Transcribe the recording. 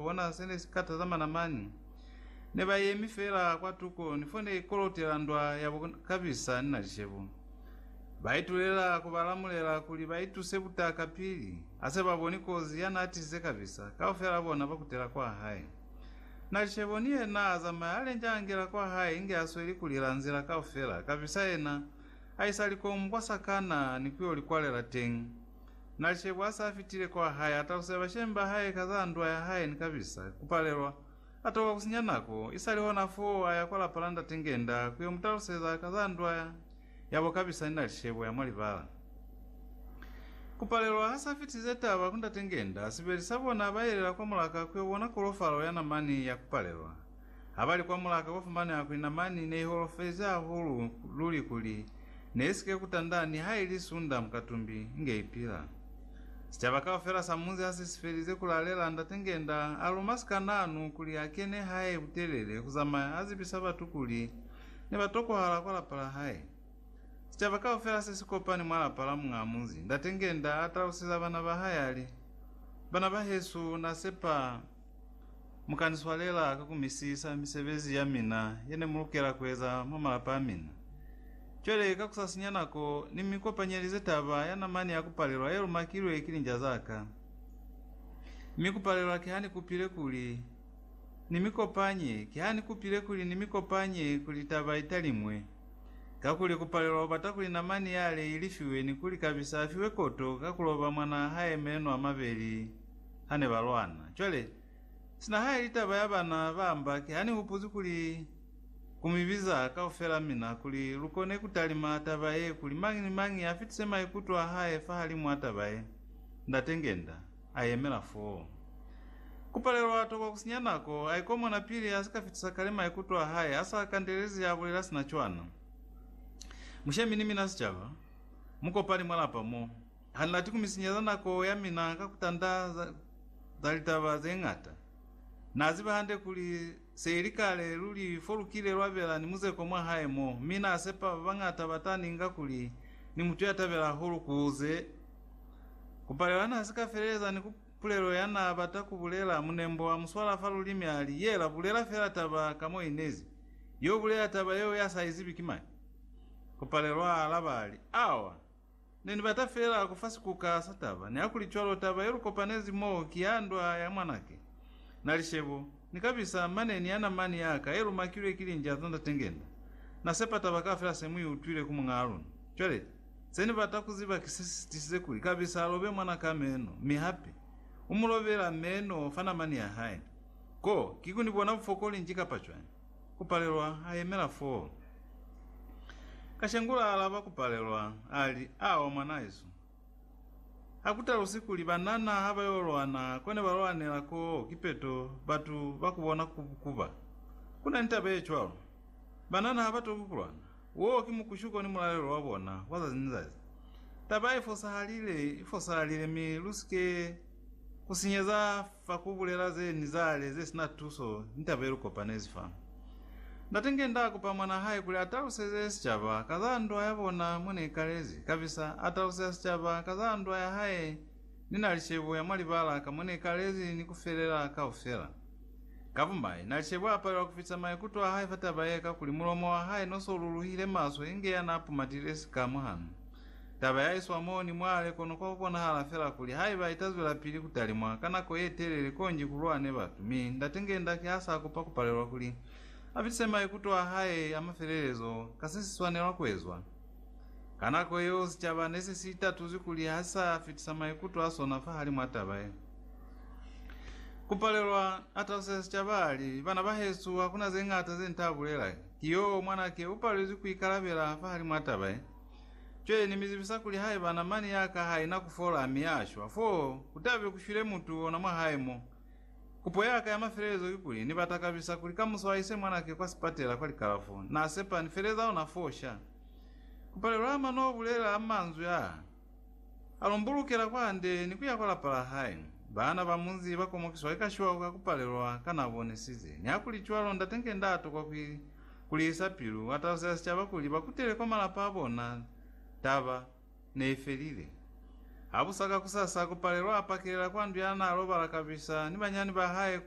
Bona se ne si ka taza mana mani. Ne ba yemi fela kwa tuko ni fo ne ikolotela ndwa ya bo Kabisa ni Nalishebo. Ba itulela ku ba lamulela kuli ba ituse butaka pili ha se ba boni kozi ya n'a tisize Kabisa, kaufela bona ba kutela kwa hae. Nalishebo ni yena a zamaya a lenja a ngela kwa hae inge a sweli ku lila nzila kaufela, Kabisa yena a isa likomu kwa sakana ni ku yo li kwalela teñi. Na Shebo a sa fitile kwa hae, a talusela bashemi ba hae ka za ndwa ya hae ni kabisa ku palelwa. A toka ku sinya nako. Isali hona foo, a ya kwa lapa la Ndate Ngenda ku yo mu taluseza ka za ndwa yabo kabisa ni na Shebo ya mwa libala. Ku palelwa ha sa fitilize taba ku Ndate Ngenda, sibeli sa bona ba yelela kwa mulaka ku yo bona kolofalo ya namani ya ku palelwa. Habali kwa mulaka kwa fumaneha kuli namani ne iholofezi hahulu luli kuli ne isike kutanda nihaili sunda mukatumbi nge ipila. Sicaba kaufela sa munzi hasi sifelize kulalela Ndate Ngenda aluma sikananu kuli akene hae butelele kuzamaya azibisa batu kuli nebatokohala kwa lapa lahae. Sicaba kaufela sesikopani mwa lapa la muñaa munzi, Ndate Ngenda atalusiza bana bahae ali, Bana bahesu nasepa Mukaniswalela ka kumisisa misebezi yamina yenemulukela kueza mwa malapa amina. Cwale ka kusasinya nako, nimikopanyelize taba ya namani ya kupalelwa yelumakilwe ki linja zaka. Mi kupalelwa kihanikupile kuli nimikopanye, kihanikupile kuli nimikopanye kuli taba italimwe, kakuli kupalelwa ubata kuli namani yale ilifiwe ni kuli kabisa afiwe koto ka kuloba mwanaa hae meno amabeli. ha ne ba lwana. Cwale, sina ha i li taba ya bana ba Ambaki, ha ni hupuzi kuli ku mi biza kaufela mina kuli lu kone ku talima taba ye, kuli mañi ni mañi a fitise maikuto a hae fahalimu a taba ye. Ndate Ngenda a yemela foo. Ku palelwa tokwa ku sinya nako, a ikomona pili a si ka fitisa kale maikuto a hae a sa kandelezi a bulela sina cwana. Mushemi ni mina sicaba, mu kopani mwa lapa mo. Ha ni lati ku mi sinyeza nako ya mina ka ku tanda za, za litaba ze ñata. Na ziba hande kuli se ili kale luli fo lu kile lwa bela ni muzeko mwa hae mo, mi na sepa ba bañata ba ta ni nga kuli ni mutu ya tabela hahulu ku ze ku palela. Na si ka feleleza ni ku pulelo ya na bata ku bulela. Munembo wa mu swala fa lulimi a li, Yela, bulela fela taba ka mo i nezi. Yo bulela taba yeo ya sa i zibi ki mani? Ku palelwa a alaba a li, Awa! Ne ni bata fela ku fa sikuka sa taba, nihakuli cwalo taba ye lu kopanezi mo ki ya ndwa ya mwanake. Na li, Shebo, ni ka bisa mane ni yana mani ya ka ye lu makilwe ki linja za Ndate Ngenda. Na sepa taba kaufela se mu i utwile ku muñaa luna. Cwale, se ni bata ku ziba ki se si tisize kuli ka bisa a lobe mwana ka meno, mi hape, u mu lobela meno fa namani ya hae. Ko, ki ku ni bona bufokoli nji kapa cwañi? Kupalelwa a yemela fo. Kashengula a alaba Kupalelwa, a li, Awa mwanaesu. Ha ku talusi kuli banana ha ba yo lwana ko ne ba lwanela koo kipeto batu ba ku bona ku kuba. Ku na ni taba ye cwalo. Banana ha ba toki ku lwana. Woo ki mukushuko ni mulalelo wa bona wa zazi ni zazi. Taba i fosahalile, i fosahalile mi lu si ke ku sinyeza Fa ku bulela ze ni zale ze sina tuso, ni taba ye lu kopanezi fa. Ndate nge nda kupa mwan'a hae kuli a taluseze sicaba ka za ndwa ya bona mo ne ikalezi, kabisa a taluseza sicaba ka za ndwa ya hae. Ni na li cebo ya mwa libala ka mo ne ikalezi ni ku felela kaufela. Ka bumai, na li cebo a palelwa ku fitisa maikuto a hae fa taba ye, kakuli mulomo wa hae no so luluhile maswe inge ya n'a pumatile sika mwahanu. Taba ya iswa mo ni mwale kono kwa ku konahala fela kuli haiba ita zwelapili ku talimwa ka nako ye telele konji ku lwane batu, mi Ndate nge Ndaki ha sa kupa ku palelwa kuli a fitise maikuto a Hae a mafelelezo ka se si swanelwa ku ezwa. Ka nako yeo sicaba ne se si itatuzwi kuli ha si sa fitisa maikuto a sona fahalimw'a taba ye. Ku palelwa, a taluseza sicaba a li, Bana bahesu, hakuna ze ñata ze ni ta bulela. Ki yo, mwanake u palezwi ku ikalabela fahalimw'a taba ye. Cwale Ni mi zibisa kuli haiba namani ya ka ha ina ku fola mi ya shwa, fo ku ta be ku shwile mutu ona mwa hae mo. Kupo ya ka ya mafelelezo ki kuli, Ni ba takabisa kuli kamuso ha ise mwanake kwa sipatela kwa likalafo. Na sepa ni feleza ona foo sha. Ku palelwa ama no bulela manzwi a, a lumbulukela kwande ni ku ya kwa lapa la hae. Baana ba munzi ba komokiswa ki kashiwa ka ku palelwa ka na bonisize. Nihakulicwalo, ndate nge nda tokwa ku Kulihisa pilu, wa talusela sicaba kuli ba kutele kwa malapa a bona. Taba ne i felile. Habusa kakusasa, Kupalelwa a pakelela kwa ndu ya naa lobala kabisa ni banyani ba hae kuli